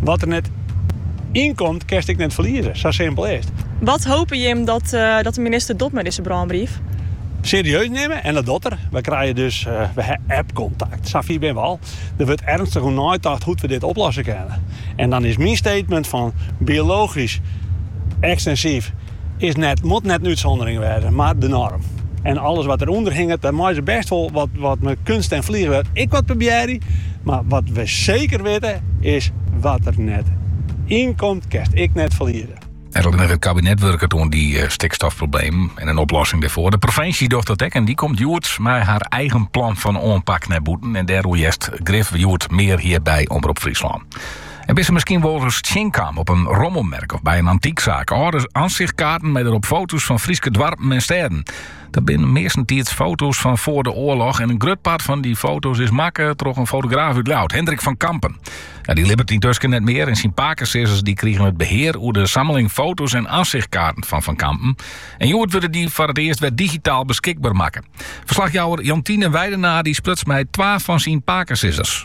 Wat der net yn komt, kinst ek net ferlieze. Sa simpel is it. Wat hope jim dat de minister docht mei dizze brânbrief? Serieus nimme en dat docht er. Wy krije dus app-kontakt. Sa fier binne we al. Der wurdt ernstich oer neitocht hoe't we dit oplosse kinne. En dan is myn statement fan biologysk ekstensyf. moat net in útsûndering wêze, mar de norm. En alles wat der ûnder hinget, dêr meie se bêst wol wat, wat mei kunst en fliegewurk ek wat probearje. Mar wat we seker witte is, wat der net yn komt, kinst ek net ferlieze. It kabinet wurket oan dy stikstofproblemen en in oplossing dêrfoar. De provinsje docht dat ek en dy komt hjoed mei har eigen plan fan oanpak nei bûten. En dêroer hearst grif hjoed mear hjir by Omrop Fryslân. En bist se miskien wolris tsjinkaam, op in rommelmerk of by in antyksaak? Alde ansichtkaarten mei derop foto's fan Fryske doarpen en stêden. Dat binne meastentiids foto's fan foar de oarloch en in grut part fan dy foto's is makke troch in fotograaf út Ljouwert, Hendrik van Kampen. Dy libbet yntusken net mear en syn pakesizzers dy krigen it behear oer de sammeling foto's en ansichtkaarten fan Van Kampen. En hjoed wurde dy foar it earst wer digitaal beskikber makke. Ferslachjouwer Jantine Weidenaar dy spruts mei twa fan syn pakesizzers.